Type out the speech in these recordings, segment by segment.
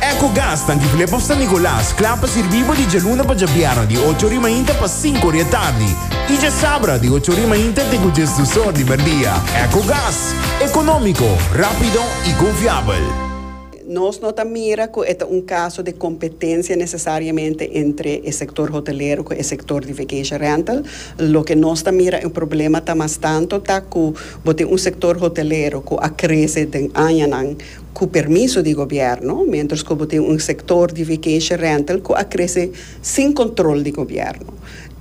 Ecogas ta difilé pa San Nicolas, kla pa sirbí bo di djaluna pa djabièrnè di ocho ori mainta pa sinku ori atardi i djasabra di ocho ori mainta te ku djes dus or di merdia. Ecogas, ekonómiko, rápido i konfiabel. Nos no ta mira ku e ta un kaso de kompetensia nesesariamente entre e sektor hotelero ku e sektor di vacation rental. Loke nos ta mira e problema ta mas tanto ta ku bo tin un sektor hotelero ku a krese den añanan, cu permiso di gobierno, mientras cu bo tin un sector di vacation rental cu a crece sin control di gobierno.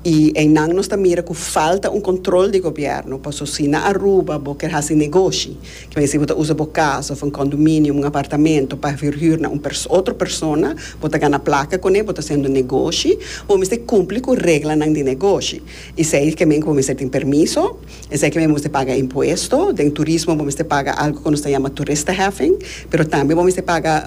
Y eynan nos ta mira cu falta un control di gobierno, paso si na Aruba bo kier haci negoshi, kier a decí bo ta usa bo casa of un condominium, un apartamento, pa verhuur na un perso, otro persona, bo ta gana placa con e, bo ta haciendo negoshi, bo mester cumpli cu reglanan di negoshi. Esey kier men cu bo mester tin permiso. Esaki mi mester paga impuesto. Den turismo bo mester paga algo ku nos ta yama toeristenheffing, pero tambe bo mester paga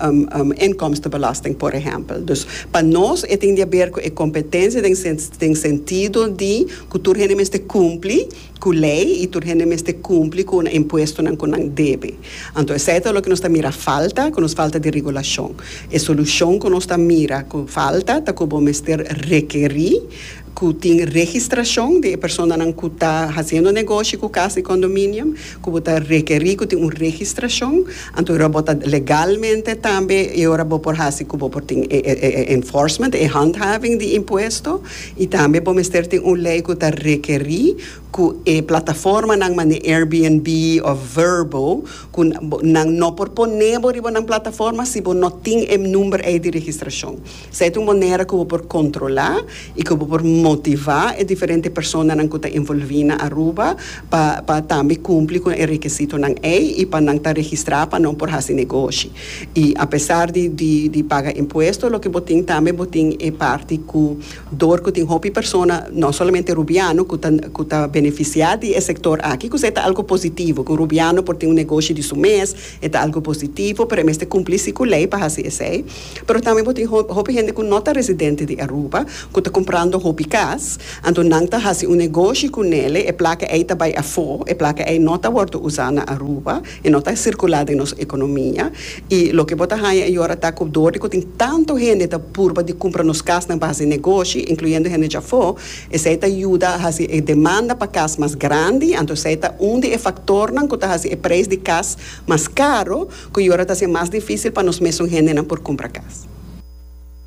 inkomstenbelasting por ehèmpel. Dus pa nos e tin di aber ku e kompetensia den den sentido di ku tur hende mester kumpli ku lei i tur hende mester kumpli ku una impuestonan ku nan debe. Anto esei ta loke nos ta mira falta, ku nos falta di regulashon. E solushon ku nos ta mira ku falta ta ku bo mester rekerí. ku tin registrashon di e personanan ku ta hasiendo negoshi ku kas di kondominio, ku bo ta rekerí ku tin un registrashon, anto e ora bo ta legalmente tambe e ora bo por hasi ku bo por tin e enforcement, e handhaving di impuesto, i tambe bo mester tin un lei ku ta rekerí ku e plataformanan manera Airbnb òf Vrbo ku nan no por pone bo riba nan plataforma si bo no tin e number ei di registrashon. Sa e ta un manera ku bo por kontrolá i ku bo por motivá e diferente personanan ku ta envolví na Aruba pa pa tambe kumpli ku e rekisitonan ei i pa nan ta registrá pa nan por hasi negoshi. I apesar di di di paga impuesto loke bo tin tambe bo tin e parti ku dor ku tin hopi persona no solamente rubiano ku ta ku ta benefisiá di e sektor aki ku se ta algu positivo ku rubiano por tin un negoshi di su mes e ta algu positivo pero e mester kumpli si ku lei pa hasi esei. Pero tambe bo tin hopi hende ku no ta residente di Aruba ku ta kumprando hopi kas, anto nan ta hasi un negoshi ku nele, e plaka ei ta bai afó, e plaka ei no ta wòrdu usá na Aruba, e no ta sirkulá den nos ekonomia, i loke bo ta haña e yora ta ku dor di ku tin tantu hende ta purba di kumpra nos kasnan pa hasi negoshi, inkluyendo hende djafó, esei ta yuda hasi e demanda pa kas mas grandi, anto esei ta un di e faktornan ku ta hasi e preis di kas mas karu. cu y ora ta haci mas dificil pa nos mesun hendenan por cumpra cas.